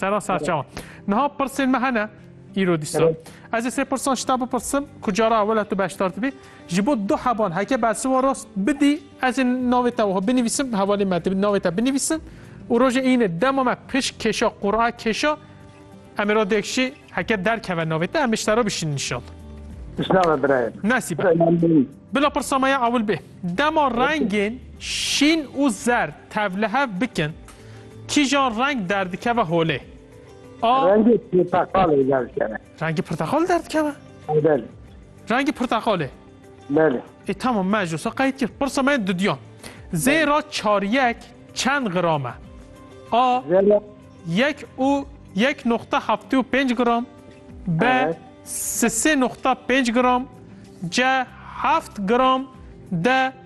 Sera ser çawa. Niha pirsên me hene îro dîsa. Ez ê sê pirsan ji te bipirsim ku cara ewela tu beşdar dibî. Ji bo du hevan heke bersiva rast bidî ez ê navê te wiha binivîsim hevalê me dibî navê te binivîsim û rojê îne dema me pişt kêşa qura kêşa em ê ra dêk jî heke derkeve navê te em ê ji te re bişînin inşallah. Pişnava birayê. Nesî be. Bila pirsa me ya ewil bê. Dema rengên şîn û zer tevlihev bikin Kîjan reng derdikeve holê? A. Rengê pirteqalê derdikeve. Rengê pirteqalê derdikeve? Belê. Rengê pirteqalê? Belê. E tamam me ji wisa qeyd kir. Pirsa me yên dudiyan. Zêra çaryek çend gram e? A. Zêra. Yek û yek noqta heftê û pênc gram. B. Evet. Sisê noqta pênc gram. C. Heft gram. D.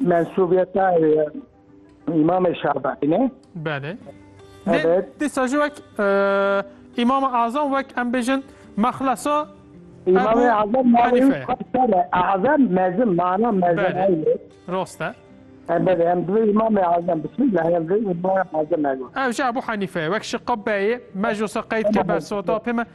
Mensubiyeta İmam-ı Şabi ne? Bale. Evet. Disa jü vek İmam-ı Azam vek em bejin mexlasa İmam-ı Azam Hanife. Azam mezim mana mezim. Rosta. Evet em dve İmam-ı Azam bismillah em dve İmam-ı Azam. Ev jü Ebu Hanife vek şıqqa beyi meclisa qeyd ke bersota pime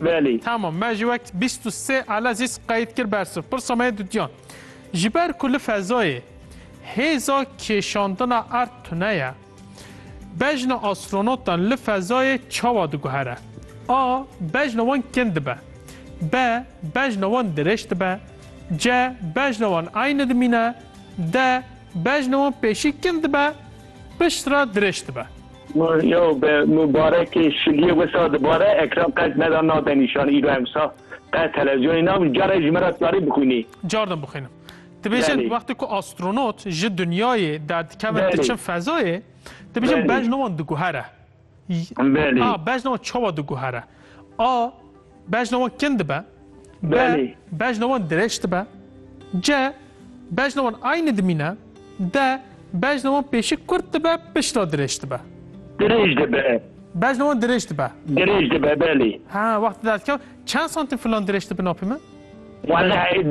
Belê. Tamam me ji wek bîst û sê Elezîz qeyd kir ber siv. Pirsa me yê dutiyan. Ji ber ku li fezayê hêza kêşandina erd tune ye, bejna astronotan li fezayê çawa diguhere? A. Bejna wan kin dibe. B. Bejna wan dirêj dibe. C. Bejna wan eyni dimîne. D. Bejna wan pêşî kin dibe. Pişt re dirêj dibe. Yo be mubarekê şiliyê wisa dibare ekran qet meda nade nîşan îro em wisa qet televizyonê nabin care ji min re tukarî bixwînî. Car din bixwînim. Dibêjin Belê. wextê ku astronot ji dinyayê derdikevin Belê. diçin fezayê, dibêjin Belê. bejna wan diguhere. Belê. A bejna wan çawa diguhere? A bejna wan kin dibe. B Belê. bejna wan dirêj dibe. C bejna wan aynî dimîne. D bejna wan pêşî kurt dibe pişt re dirêj dibe. Dirêj dibe. Bejna wan dirêj dibe. Dirêj dibe belê. Ha wextê derdikeve çend santim filan dirêj dibe napîme? Welleh